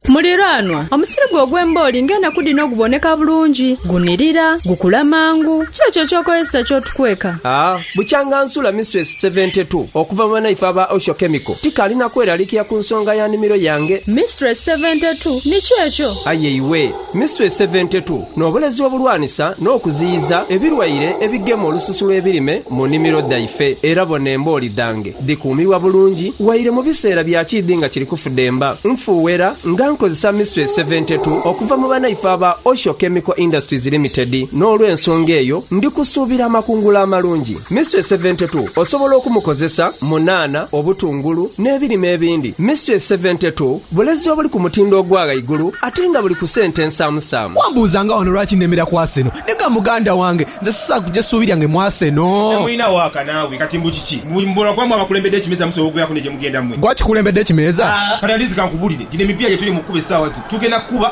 Muliraanwa, omusirigo ogw'embooli ng'enaku dhino guboneka bulungi, gunirira, gukula mangu. Ki ekyo eky'okozesa ky'otukweka? A Bukyanga nsula Mistress Seventy Two okuva mu banaife aba Osho Chemical, tikaali na kweralikira ku nsonga ya nimiro yange. Mistress Seventy Two, ni ki ekyo? Aye iwe! Mystery seventi tu, N'obulezi obulwanisa n'okuziyiza ebilwaire ebigema olususu lw'ebirime mu nimiro dhaife. Era bona embooli dhange dhikuumirwa bulungi waire mu biseera bya kiidhi nga kiri kufudemba. Nfuuwera nga nkozesa Mystery seventi tu okuva mu banaife aba Osho Chemical Industries Limited n'olw'ensonga eyo ndi kusuubira amakungula amalungi. Mystery seventi tu osobola okumukozesa mu nhanha, obutungulu n'ebirime ebindi. Mystery seventi tu Bulezi obuli ku mutindo ogwa ghaigulu ate nga buli ku sente ensaamusaamu. Wambuuza nga wano lwaki nemera ku Arsenal. Nega muganda wange, nze sisobola kuja essuubi lyange mu Arsenal. Mulina waaka naawe kati mbu kiki? Mbu mbu lwakuba mwe abakulembedde ekimeeza musobola okubeeraku ne gye mugenda mwe? Gwe akikulembedde ekimeeza? Kati at least kankubulire, gino emipiira gyetuli mu kukuba essaawa zino tugenda kukuba.